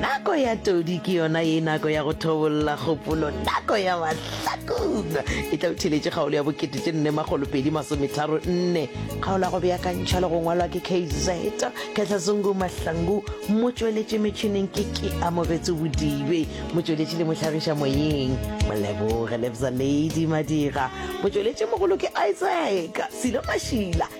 Nako ya todi ke yona ye nako ya go thobolla kgopolo, nako ya mahlakuna e tla utheletše kgaolo ya bokete tše nne makgolo pedi masometharo nne. Kgaolo ya go beakantšha le go ngwalwa ke KZ Khetlazungu Mahlangu, motšweletši metšhineng ke ke Amogetso Bodibe, motšweletši le mohlagiša moyeng Moleboge Lebza Lady Madira, motšweletši mogolo ke Isaac Silo Mašila.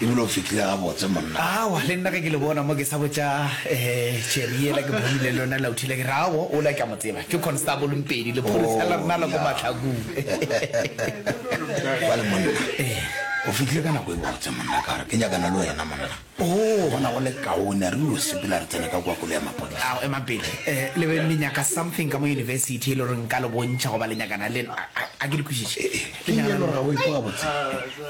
E bile o fihlile gabotse, monna. Aowa, le nna ge ke le bona mo ke sa botša Jerry yela ke bonile lona Lauthile ke re, Aowa, ola ke a mo tseba. Ke Constable Mpedi, lepholisa la rena la ko Mahlakong. Bjale, monna, o fihlile ka nako e botse, monna, ka gore ke nyakana le wena, monna. Ke bona go le kaone re yo sepela re tsene ka kua koloi ya maphodisa. Ao, emang pele, le be le nyaka something ka mo University e le gore nka le bontšha goba le nyakana le nna, a ke le kwešiše? Ke nyaka le gore o ikwa gabotse.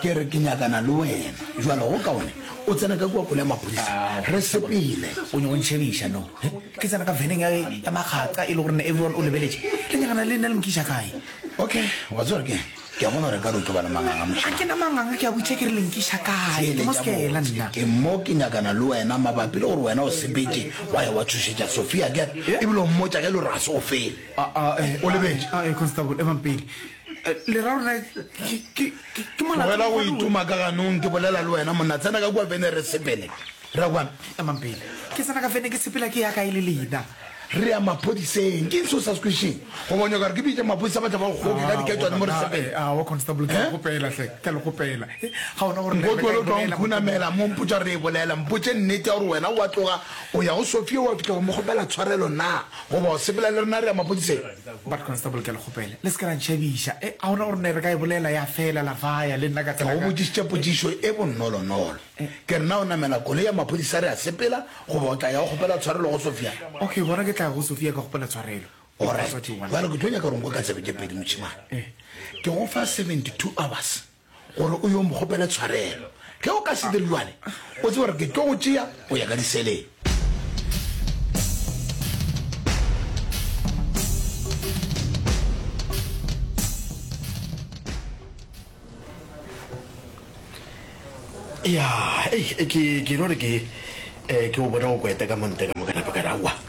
Ke re ke nyakana le wena. Jwale go kaone o tsena ka kua kole ya maphodisa. Re sepele. O nyaka o ntšhebiša, no? He? Ke tsena ka veneng ya, ya makgakga e le gore ne everyone o lebeletše. Le nyakana le nna le nkiša kae? Okay, wa tseba gore ke'ng? Ke a bona gore ekare o tlo ba le manganga mošemane. Ga ke na manganga, ke a botša ke re le nkiša kae. Ke mo skela nna. Ke mo ke nyakana le wena mabapi le gore wena o sepetše wa ya wa tšhošetša Sophia, akere? Ebile o mmotša ge e le gore ga se o fele. A-a, eh, o lebetše. A-a, Constable, emang pele. tlogela go ituma ka ganong ke bolela le wena monna tsena ka kua vene re sepele ra kwana emang pele ke tsena ka vene ke sepela ke ya kae le lena re ya maphodiseng ke ntse o sa se kwešeng go bonya kare ke bitse maphodisa ba tla ba goke ka diketswane mo re sepele nkotlwele o tla nkhunamela mo mpotsa re e bolela mpotse nnete ya gore wena wa tloga o ya go sofia wa fitlha go mo kgopela tshwarelo na goba o sepela le rena re ya maphodiseng But constable ke a le kgopela le se ke la ntšhabiša e, a gona gore ne re ka e bolela ya fela la faya le nna ka tsela Ke go botšišitše potšišo e bonnolonolo. Ke re na o namela koloi ya maphodisa re a sepela goba o tla ya go kgopela tshwarelo go Sofia? Okay, gona ke tla ya go Sofia ka kgopela tshwarelo. Alright, bjale ke tlo nyaka gore o nko ka tsebe tše pedi mošemane. Ke go fa seventy two hours. gore o yo mokgopele tshwarelo ge o ka se dire jwale o tse gore ke tlo go tšea o ya ka diseleng ya ke ke no re ke eh, ke o bona o kweta ka monte ka mokana pakarawa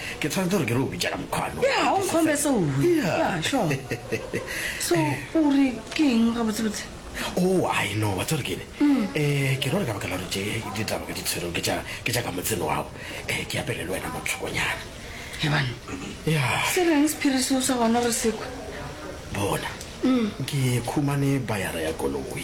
ke tshwanetse gore ke re o bitša ka mokgwano ya ga o nkgombe seo ya sho so o re ke eng ga botsebotse o oh, i know wa tsere kene um eh, ke rore ka baka la gore tse ditaba ke di tshwereng ke tša ka motseno wago um eh, ke apele le wena motlhokonyana ebane ya se reng sephiri seo sa gona re sekwe bona um ke khumane bayara ya koloi